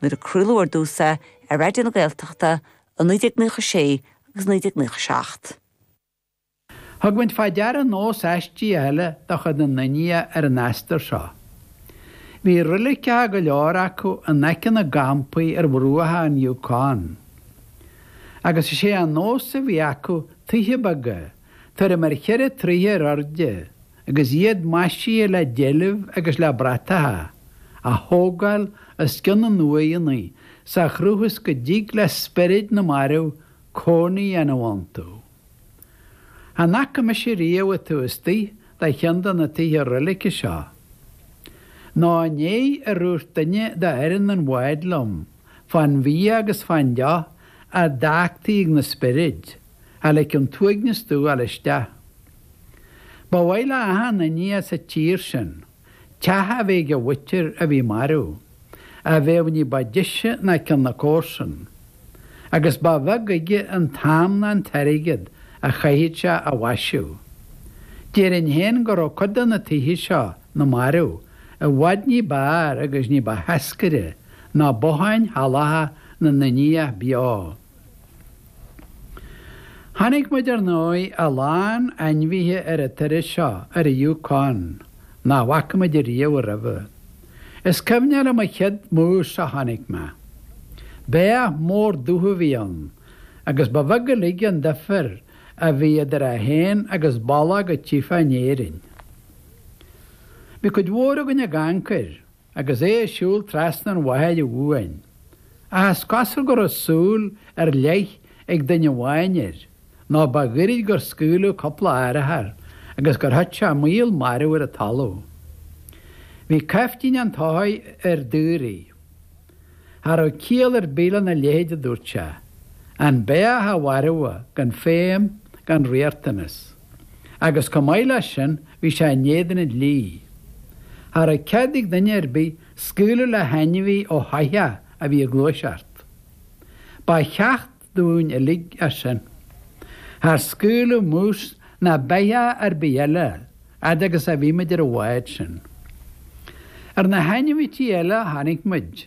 nuair a craoladh ar dtús é ar Raidió na Gaeltachta i 1996 agus 1997. Thug muid faoi deara nós aistíoch eile de chuid na nIndiach ar an astar seo. Bhí reiligeacha go leor acu in aice na gcampaí ar bhruacha an Yukon, agus is é an nós a bhí acu tithe beaga, tuairim ar cheithre troithe ar airde agus iad maisithe le deilbh agus le bratacha, a thógáil os cionn na n-uaigheanna sa chruth is go dtig le spioraid na marbh cónaí a dhéanamh iontu. Chan fhaca mise riamh an taobh istigh de cheann de na tithe reilige seo. Ná i ndiaidh ar dhúirt duine d'fhoireann an bháid liom fán bhia agus fán deoch a d'fhágtaí ag na spioraid. cha ligfeadh an t-uaigneas domh a ghabháil isteach. Ba mhaith le achan Indiach sa tír sin teach a bheith ag a mhuintir a bhí marbh, a bheadh ní ba deise ná ceann na comharsan. Agus ba bheag aige an t-am ná an t-airgead a chaithfeadh sé á mhaisiú. Déarfainn féin go raibh cuid de na tithe seo na marbh i bhfad ní b'fhearr agus ní ba sheascaire ná botháin shalacha na nIndiach beo. Chonaic muid ar ndóigh a lán ainmhithe ar an turas seo ar an Yukon nach bhfaca muid riamh roimhe. Is cuimhneach liom an chéad moose a chonaic mé. Beathach mór dubh a bhí ann agus ba bheag uilig an duifear a bhí idir é féin agus bológ a tchífeá in Éirinn. Bhí cuid mhór againn ag amharc air. agus é ag siúl trasna an bhaill uainn, ach is cosúil go raibh súil ar leith ag duine amháin air, nó ba ghoirid gur scaoileadh cúpla urchar agus gur thit sé maol marbh ar an talamh. Bhí caiftín an tsoithigh ar an daoraí. Cha raibh ciall ar bith lena leithéid, a dúirt sé. An beathach a mharbhadh, gan feidhm, gan riachtanas. agus chomh maith leis sin bhí sé in éadan an dlí. Cha raibh cead ag duine ar bith scaoileadh le hainmhí ó shoitheach a bhí ag gluaiseacht. Ba cheacht dúinn uilig é sin. Char scaoileadh mús ná beathach ar bith eile fhad agus a bhí muid ar an bhád sin. Ar na hainmhithe eile a chonaic muid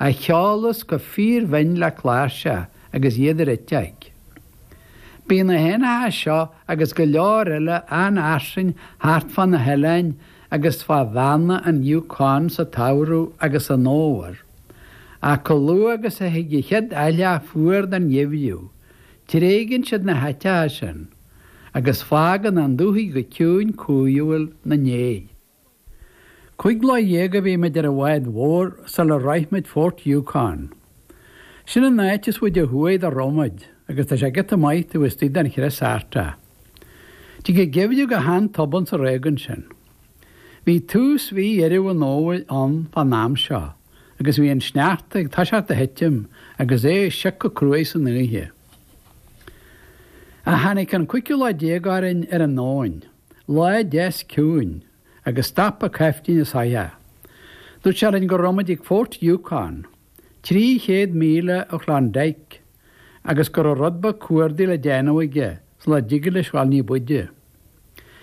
a cheolas go fíor-bhinn le cláirseach agus iad ar eiteog. Bíonn na héanacha seo agus go leor eile an-fhairsing thart fá na hoileáin agus fá bheanna an Yukon sa tsamhradh agus san fhómhar, ach chomh luath agus a thig a chéad aithleá fuar den gheimhreadh, tréigeann siad na háiteacha sin agus fágann an dúthaigh go ciúin cumhúil ina ndiaidh. Cúig lá dhéag a bhí muid ar an bhád mhór sular shroich muid Fort Yukon. Sin an áit is faide ó thuaidh dá raibh muid agus tá sé giota maith taobh istigh den chrios Artach. Tig an geimhreadh go han-tobann sa réigiún sin. Bhí tús mhí Dheireadh an Fhómhair ann fán am seo agus bhí an sneachta ag toiseacht a thitim agus é ag sioc go cruaidh san oíche. Ach tháinig an cúigiú lá déag orainn ar an abhainn. Lá deas ciúin, agus stop an caiftín an soitheach. Dúirt sé linn go raibh muid ag Fort Yukon, 300 míle ó Klondike, agus go raibh rud beag cuardaigh le déanamh aige sula dtigeadh leis dhul ní b'fhaide.